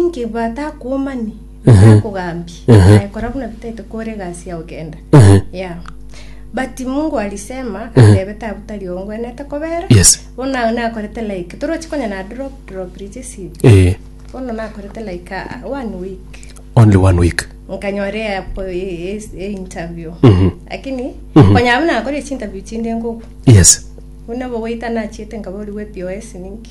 Inki batakuomani bitakogambie, Ehe. naye kora buna bitaete kore egasi yao genda. Ehe. Yeah. But Mungu alisema atebe tabu tari ongwenete kobera. Yes. Bono nakorete like torochi konya na drop drop riche si. Eh, Bono nakorete like ah, one week. only one week. Nkanyora ya po e, e, e interview. Mhm. Lakini Mhm. konya abu nakore chi interview chinde ngoku. Yes. Buna bogoita nachiete nkabori we POS ninki.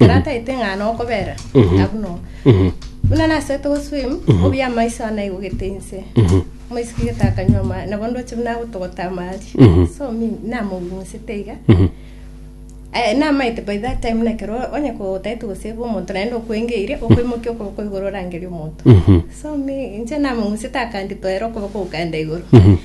Ekero ataete ng'a nokobera, nabu no. Buna nasete goswim, obuya amaiso ane aigogete inse. Omaiso kegete akanywa amache, nabo ndoche buna agotogota amache. So mi namogunsete iga. Eh, namaete by that time buna ekero onye kotaete gosave omonto naende okwengeirie, okoimokia okoboko igoro orangerie omonto. So mi inche namogunsete akanditoera okoboko gokaenda igoro.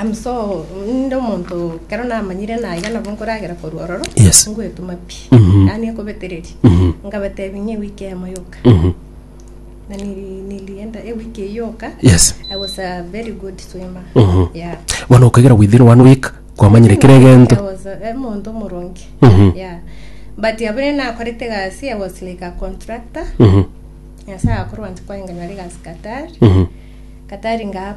Amso, ninde omonto kero namanyire naiga nabo nkoragera korwa ororo Yes. ngoetoma pi Mhm. yaani ekobetereria Mhm. ngabatebia ng'a ewiki eyemo yoka Mhm. na nili- nilienda ewiki eye yoka Yes. I was a very good swimmer Mhm. yeah bono okagera within one week kwamanyire kera I egento was a- omonto omoronge Mhm. yeah but abere nakorete egasi I was like a contractor Mhm. nyasae akorwa nti kwanganyora egasi Qatar Mhm. Qatar nga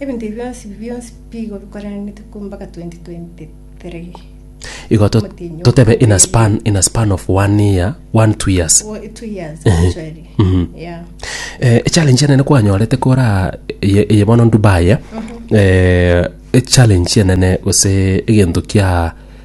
Ebinto ebi bionsi bi bionsi bigo bikorananete korwa mpaka 2023. Igo to- Omotenyi o totebe in a kabere. span, in a span of one year, one two years. Wo- two years actually. Yeah. Eh, echallenge enene kwanyorete kora eye eye bono Dubai eh, eh, echallenge enene gose egento kia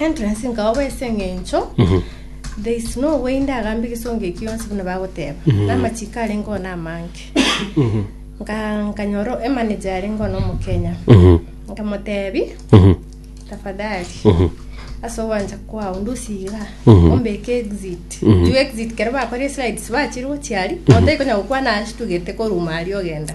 Entrance nkaoba ase eng'encho there is no way ndagambe egesongo ekio yonsi buna bagoteba na amachiko arenge oo namange nka nkanyora emanager arenge oo nomokenya nkamotebi tafadhali ase ogwancha kwao ndosiga ombeke exit juu exit kero bakore slides bachire gochiari moto ikonya gokwana ashtugete koruma aria ogenda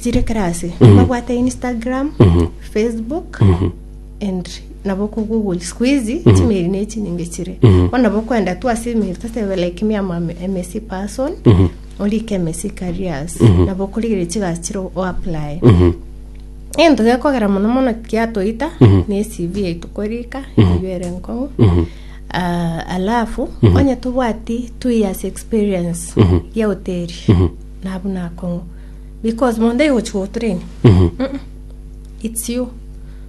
chire kera ase babwate instagram facebook and nabo ko google siku hizi chimeri ne chinyinge chire bono nabo kwenda tu ase emeri tosebe like me am am msc person orike msc careers nabo korigere chigasi chire o apply ento gekogera mono mono kiatoita ne cv yaito korika eyio ere nkong'u Ah, alafu onye tobwati two years experience ya hoteli nabu nakong'u because mondo aigochia gotrain Mhm. Mm-mm. it's you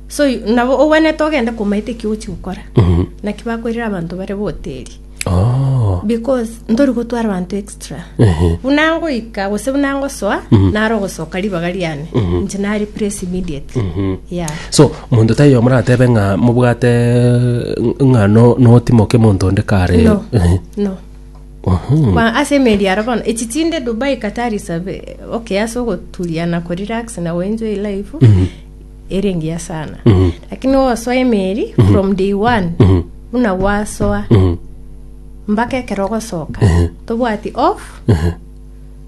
so you- nabo ogwenete ogende komaete eki ochi gokora Mhm. naki bakwerire abanto bare boteri Oh. because ntori gotwara abanto extra Ehe. buna ngoika gose buna ngosoa naro gosoka ribaga riane nche na replace immediately yeah so monto tayo moratebe ng'a mobwate ng'a no- notimoke monto onde kare no Ehe. no Kwa ase emeri aro bono echi chinde Dubai Qatar isabe okay ase ogoturia na ko relax na go enjoy life ere engiya sana lakini ogosoa emeri from day one buna gwasoa mpaka ekero ogosoka tobwati off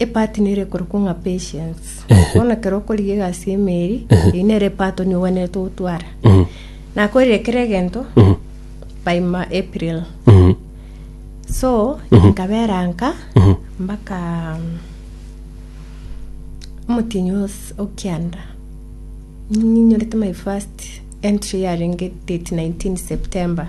Epart nero ekorokwa ng'a patience bono ekero okorigia egasi y'emeeri eyio nero epart nigo ogwenerete gotwara nakorire kera egento by ma april so nkabera nka mpaka omotienyi os- o kianda ninyorete my first entry yarenge date 19 september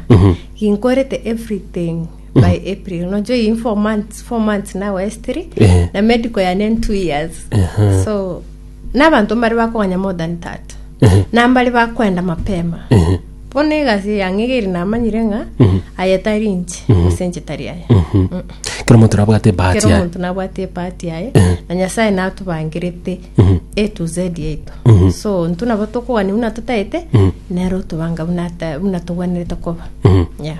ginkorete everything by april nojo iyi four months four months now estiri Ehe. na medical yane in two years Ehe. so n'abanto mbare bakoganya more than that Ehe. nambare bakwenda mapema Ehe. bono egasi yang'e egeri namanyire ng'a aya tari inche ase inche tari aya Mhm. kero omonto nabwate ebahati kero yaye omonto nabwate epati yaye na nyasaye natobangirete a to z yaito so ntu nabo tokogania buna totaete nero otobanga buna ata- buna togwenerete koba Mhm. yeah.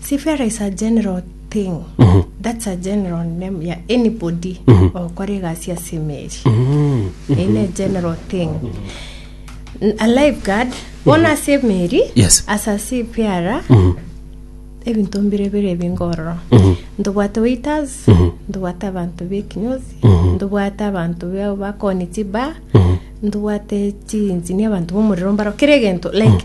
Seafarer is a general thing. That's a general name ya anybody okora egasi ase emeri. Eye ne general thing. N- A lifeguard bono ase emeri Yes. ase a seafarer ebinto mbire bire ebingororo ntobwate waiters ntobwate abanto bekinyosi ntobwate abanto be- bakoni chiba ntobwate chinjini abanto bomorero mbaro kere egento like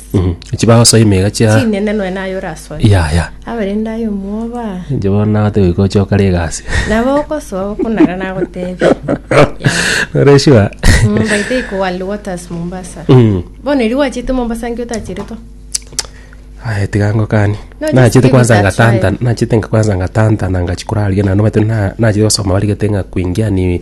Mhm. Inche bagosoa emega chia chinene nonya naye orasoe yaya. abarende aye omwoba Inche bono nabate goika oche okare egasi. nabo ogosoa okonara nagotebia Ore sure? Mm, by the way, ko World Waters Mombasa Mm. bono eri gwachete Mombasa nki otacheretwa Aye tiga ngokani. No, just Nachete give kwanza it a ngatanta, try. nachete nga- kwanza ngatanta na ngachi koraria na nobate na nachete gosoma barigete ng'a kuingia ni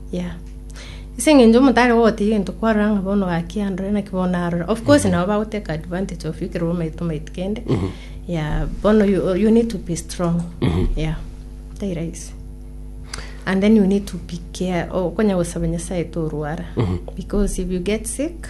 Yeah. Ase eng'encho omotare gogotebia egento kwarora ng'a bono gaki andore naki bono arore. Of course nabo bagoteka advantage of you ekero bamaete omaiti kende. Yeah, bono you, you need to be strong. Yeah. Tai rahisi. And then you need to be care. Okonya gosaba Nyasaye torwara. Because if you get sick,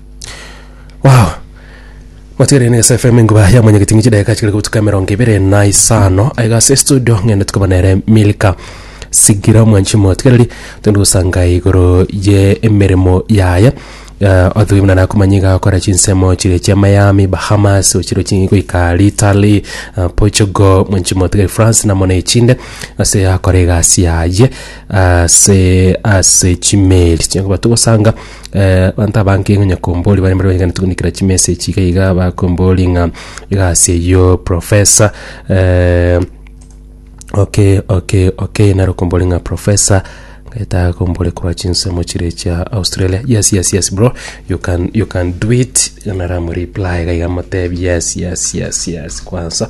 Wow. Matigereire na Yes FM enkuba ya mwenyekiti ng'ichi dakika chikere gotuka emerongo ibere na isano aiga ase studio ng'ende tukaba nere Milka sigira mwanchi motigereri tondi gosanga igoro ye emeremo yaye uh, othugi muna nakumanya iga akora chinsemo chire chia Miami Bahamas ochiro chi goika Italy uh, Portugal mwanchi motigeri France na mona echinde ase akora egasi yaye ase ase chimeli chinkuba togosanga Abanto abange onye kombori bare mbare bayeganete goikera chimesa echi iga iga bakombori ng'a egasi eyio professor eh, oke oke oke naro kombori ng'a professor ngeta kombori korwa chinsemo chire chia Australia yes yes yes bro you can you can do it naramu reply iga iga motebi yes yes yes yes kwansa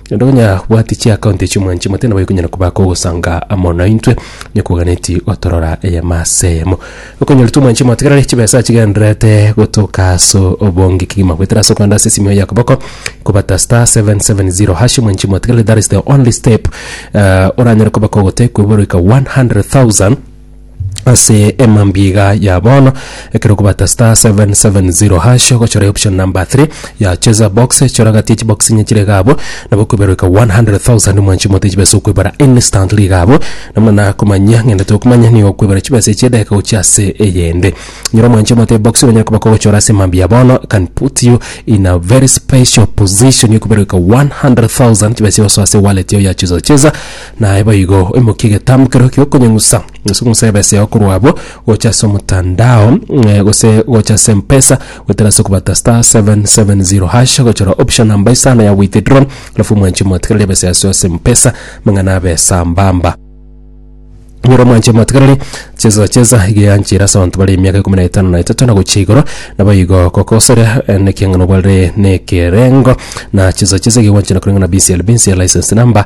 Naende onye abwati chiakaunti echio mwanche mote nabo ekonyara kobaka ogosanga amo naintwe, onye koganeti gotorora eyemo as'eyemo. Okonyoritwe mwanche motegerere chibesa achigendererete gotoka aso obonge kegima goetera ase okogenda ase esimiyo ya koboko kobata star seven seven zero hash mwanche motegerere that is the only step eh, oranyare kobaka ogotekwa eborweka 100,000 ase emambiga ya bono ekero okobata star 770 hash ogochora option number 3 ya cheza box chora gati chibox inye chire iga abwo nabo okweberereka 100,000 mwanchi mote chibesa okwebara instantly iga abwo namuna nakomanyia ng'ende tokomanya nigo okwebara chibesa echi edageka gochia ase eyende nyora mwanchi omote ebox onyare koba kogochora ase emambia ya bono can put you in a very special position ya okweberereka 100,000 chibesa egosoa ase ewallet yao ya cheza cheza Naye boigo oimokie egetambo kereo gi'okonyeng'usa gose okong'usa ebesa yao korwa abwo gocha ase omotandao eh, gose gocha ase mpesa goetera ase okobata star 770 hash gochora option namba isano ya withdraw alafu omwanche motigereri ebesa yase ase mpesa mang'ana abe sambamba nyora omwanche motigereri chesa chesa iga yanchera ase abanto bare emiaka ikomi na etano na etato na gochia igoro nabo igo gokosere eh, nekiang'ana obwarire nekerengo na chesa chesa iga gwanchera koreng'ana BCLB nsia license number